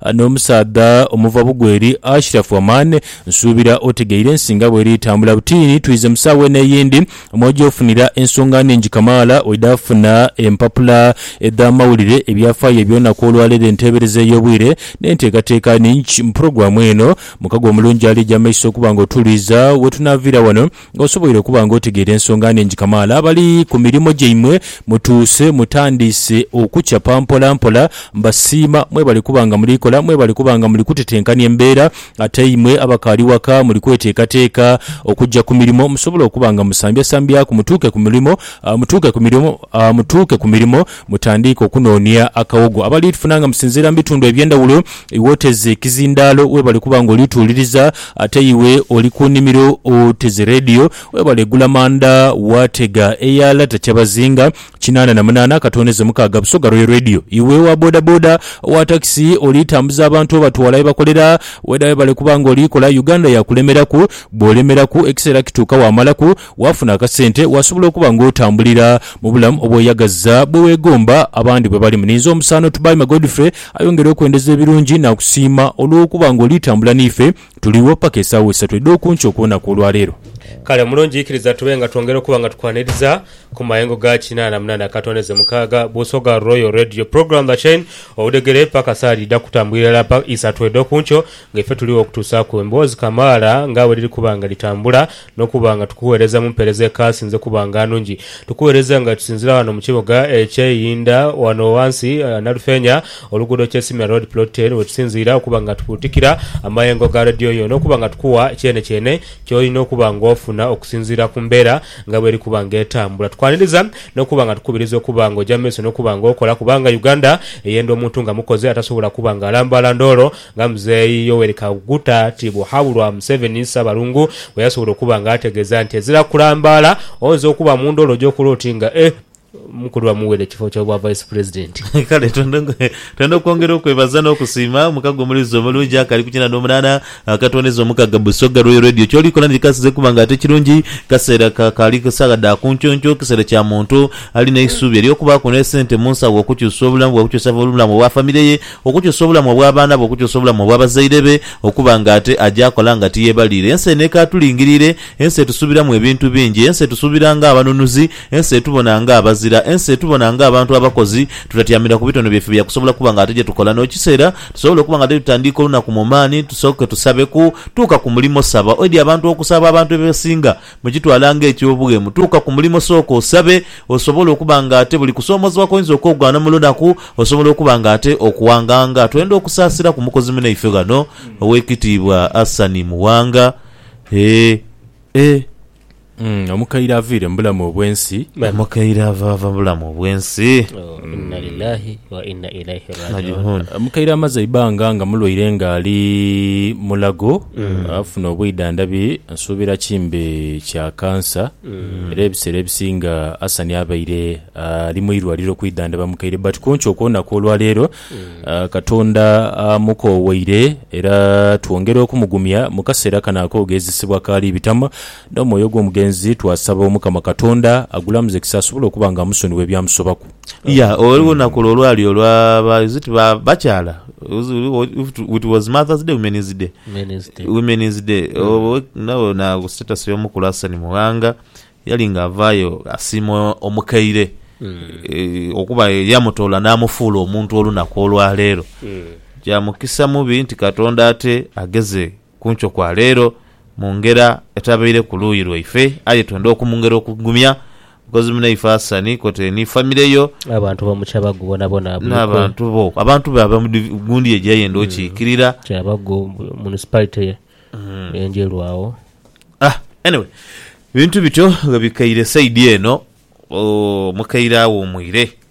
Ano omusaadha omuva bugweri Ashiraf Aman nsuubira otegeire ensi nga bweri etambula butiini twiize mu saawa eno eyindi mw'oja ofunira ensonga nhingi kamaala oidha funa empapula edh'amawulire, ebyafaayo eby'olunaku olwaleero, enteebereza ey'obwire n'enteekateeka nhingi mu pulogulaamu eno. Mukago omulungi ali eja maiso okuba nga otuwuliiza wetunaaviira wano. Nga osoboire okuba nga otegeera ensonga nhingi kamaala, abali ku mirimo gyaimwe mutuuse mutandiise okucapa mpola mpola. Mbasiima mwebali kuba nga muli kola, mwebali kuba nga muli kutetenkania embeera. Ate imwe abakaali waka muli kweteekateeka okujja ku mirimo musobole okuba nga musambyasambyaku mutuuke ku mulimo, mutuuke ku mirimo, mutuuke ku mirimo. Mutandiike okunoonia akawogo abali tufuna nga musinziira mu bitundu eby'endhawulo. Iwe oteze kizindaalo weebale kuba nga oli tuwuliriza. Ate iwe oli ku nnimiro oteze leediyo, weebale gula manda waatega eya Lata Kyabazinga kinaana na munaana akatooneze mukaaga Busoga Royal Radio. Iwe owa bodaboda, owa takisi oli tambuza abantu obatwala ye bakolera, weda weebale kuba nga oli kola. Uganda yaakulemeraku, bw'olemeraku ekiseera kituuka waamalaku. Waafuna akasente, wasobola okuba ng'otambulira mu bulamu obweyagaza bwe weegomba abandi bwe balimu. Ninze omusaano Tubaime Godfrey ayongere okwendeza ebirungi n'akusiima olw'okuba ng'oli tambula n'ife. Tuliwo paka esaawa isatu edh'oku nkya okuwona kw'olwaleero. Kale mulungi ikiriza tube nga twongera okuba nga tukwaniriza ku mayengo ga kinaana munaana katondeze mukaaga Busoga Royal Radio Program The Chain Obudhegere paka sawa dhidha kutambulira irala pa isatu edh'oku nkyo nga ife tuliwo okutuusaaku emboozi kamaala nga bwe dhiri kuba nga dhitambula Nokuba nga tukugheereza mu mpeereza ekaasinze kuba nga nungi, tukugheereza nga tusinzira ghano mu kibuga ekye Iyinda ghano ghansi Nalufeenya, oluguudo Kyesimira Road Plot Ten, wetusinziira okuba nga tukuutikira amayengo ga Radio yo nokuba nga tukugha kyenekyene kyolina okuba nga ofuna okusinziira ku mbeera nga bweri kuba nga etambula. Tukwaniriza nokuba nga tukubiriza okuba nga oja mu maiso nokuba nga okola kubanga Uganda eyenda omuntu nga mukozi atasobola kuba nga alambaala ndoolo Nga Mzeei Yoweri Kaguta tibughabulwa Museveni Ssabalungu bweyasobola okuba nga ategeza nti ezira kulambaala oyinza okuba mu ndhoolo gyokula oti nga e mukulu bamuweere ekifo ky'obwa Vice President. Kale twendha okwongera okwebaza n'okusiima mukago omulezi omulungi akali ku kinana omunana akatwoneza omukaga Busoga Royal Radio. Kyoli kola nti kasize kuba nga ate kirungi kaseera kakaali saagha dha kunkyonkyoo kiseera kya muntu alina eisuubi ery'okubaaku n'esente mu nsawo okukyusa obulamu bwe okukyusa obulamu bwa famire ye Okukyusa obulamu obw'abaana be, okukyusa obulamu obw'abazaire be, okuba nga ate aja akola nga tiyebaliire. Ensi eno ekaatulingiriire, ensi etusuubiramu ebintu bingi. Ensi etusuubira ng'abanunuzi, ensi etubona ng'abazira, ensi etubona ng'abantu abakozi. Tutatyamira ku bitono byaife bya kusobola kuba nga ate gye tukola. N'ekiseera tusobola okuba nga titutandiika olunaku mu maani, tusooke tusabeku. Tuuka ku mulimo, saba. Oidhi abantu okusaba, abantu ebesinga. Mukitwala ng'eky'obughemu, tuuka ku mulimo sooka osabe, osobole okuba ng'ate buli kusoomoozebwa kw'oinza okwogwana mu lunaku, osobola okuba ng'ate okuwanganga. Twenda okusaasira ku mukozi munaife ghano, Ow'ekitiibwa Asani Muwanga. Eeh, eeh. Omukaire aviire mu bulamu obw'ensi. Omukaire avaava mu bulamu obw'ensi. Inna lillahi wa inna ilaihi raji'un. Omukaire amaze eibanga nga mulwaire ng'ali mulago afuna obwidhandhabi nsuubira ki mbe kya kansa era ebiseera ebisinga Hassan abaire ali mu irwaliro kwidhandhaba mukaire but ku nkyo okw'olunaku olwaleero Katonda amukooweire era twongera okumugumya mu kaseera kano ak'ogeezesebwa k'ali bitamu. N'omwoyo gw'omugenzi twasaba Omukama Katonda agulamuze kisa asobole okuba nga amusonigha ebyamusobaku. Ya, ghaligho nakola olwali olwa ba is it ba bakyala was it was mother's day women's day Men's day. women's day Owe- ndhaba na ku status y'omukulu Hassan Mughanga yali nga avaayo asiima omukaire eh, okuba eyamutoola n'amufuula omuntu olunaku olwaleero kya mukisa mubi nti Katonda ate ageze Ku nkyo kwa leero, mu ngera etabaire ku luuyi lwaife, aye twenda okumungera okugumya mukozi munaife Asani kwotaire ni famire yo, Abantu bo mu kyabagu bonabona abuli kwe. n'abantu bo, abantu be aba mu div, gundi ejo eyayenda okiikirira. Kyabagu mu municipality ye Enjeru agho. Ah, anyway, bintu bityo bwe bikaire saidi eno, ooh, mukaire awuumwire.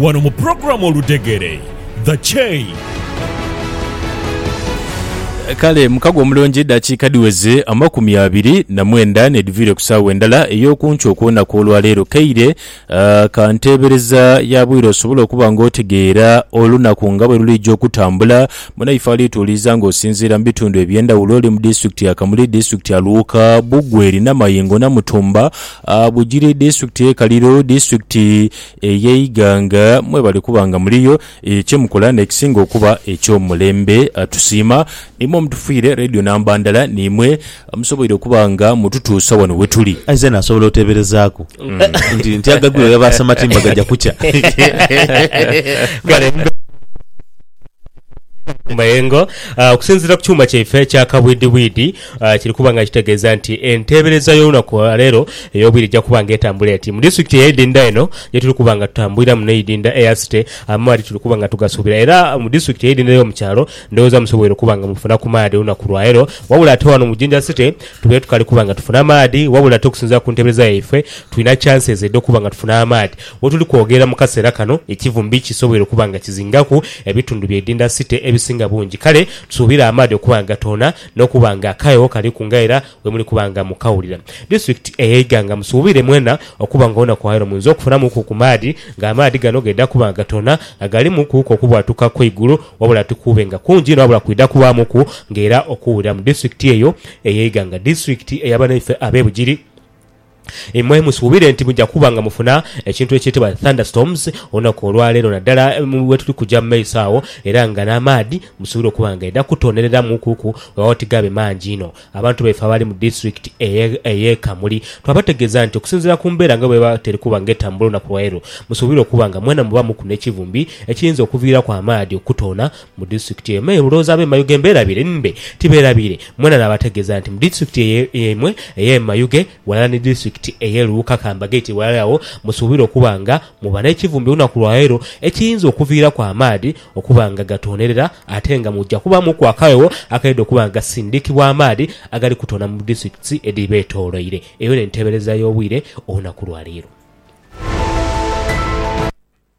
Wano mu pulogulaamu Oludhegere, The Chain. Kale mukago omulungi eddakiika dhiweze amakumi abiri na mwenda n'edhiviire ku saawa endala ey'oku nkyo okw'olunaku olwa leero. Kaire ka nteebereza ya bwire osobole okuba ng'otegeera olunaku nga bwe luliija okutambula. Munaife alituwuliriza ng'osinziira mu bitundu eby'endhawulo oli mu disitulikiti ya Kamuli, disitulikiti ya Luuka, Bugweri, Namayingo, Namutumba, Bugiri, disitulikiti y'e Kaliro, disitulikiti ey'eighanga mwe bali kuba nga muliyo kye mukola n'ekisinga okuba eky'omulembe. Tusiima imwe omutufiire leediyo namba ndala niimwe amusoboire okuba nga mututuusa wano we tuli. Aye zeena asobola oteeberezaaku nti nti agagwire oyo aba asamatii mba gaja kukya. Kale mbeera ku mayengo okusinziira ku kyuma kyaife ekya kabwidhibwidhi. Kiri kuba nga kitegeeza nti enteebereza y'olunaku lwa leero ey'obwire eja kuba nga etambula eti. Mu disitulikiti ey'eidinda eno ye tuli kuba nga tutambuliramu n'eidinda eya City, amaadhi tuli kuba nga tugasuubira. Era mu disitulikiti ey'eidinda y'omu kyalo ndhoghoza musoboire okuba nga mufuna ku maadhi olunaku lwa leero. Wabula ate wano mu Jinja City tubaire tukali kuba nga tufuna maadhi wabula ate okusinziira ku nteebereza yaifwe tulina chances edh'okuba nga tufuna amaadhi. Wetuli kwogerera mu kaseera kano ekivumbi kisoboire okuba nga kizingaku ebitundu by'eidinda City ebisinga bungi kale tusuubire amaadhi okuba nga gatoona n'okuba nga akaegho kaliku nga era bwemuli kuba nga mukawulira. Disitulikiti eye Iganga musuubire mwena okuba nga olunaku olwaleero muinza okufunamuku ku maadhi nga amaadhi gano gaidha kuba nga gatoona nga galimu kuuku okubwatuka kw'eigulu wabula tikuube nga kungi inho wabula kwidha kubaamuku nga era okuwulira mu disitulikiti eyo eye Iganga. Disitulikiti eya banaife abe Bugiri. Imwe musuubire nti muja kuba nga mufuna ekintu ekyetebwa thunderstorms olunaku olwa leero naddala wetuli kuja mu maiso agho era nga n'amaadhi musuubire okuba nga gaidha kutonhereramu kuku weewaawo tigaabe mangi inho. Abantu baife abali mu disitulikiti ey'e Kamuli twabategeeza nti okusinziira ku mbeera nga bweba teri kuba nga etambula olunaku lwa leero musuubire okuba nga mwena mubamuku n'ekivumbi ekiyinza okuviiraku amaadhi okutoona Mu disitulikiti eyo me Buloza ab'e Mayuge mbeerabire mbe tibeerabire mwena naabategeeza nti mu disitulikiti eyo yaimwe ey'e Mayuge ghalala ni disitulikiti ey'e Luuka ka mbagaite ghalala agho musuubire okuba nga muba n'ekivumbi olunaku lwa leero ekiyinza okuviiraku amaadhi okuba nga gatoonerera ate nga muja kubaamuku akagho akaidha okuba nga gasindikibwa amaadhi agali kutoona mu disitulikiti edhibeetooloire. Eyo n'enteebereza y'obwire olunaku lwa leero.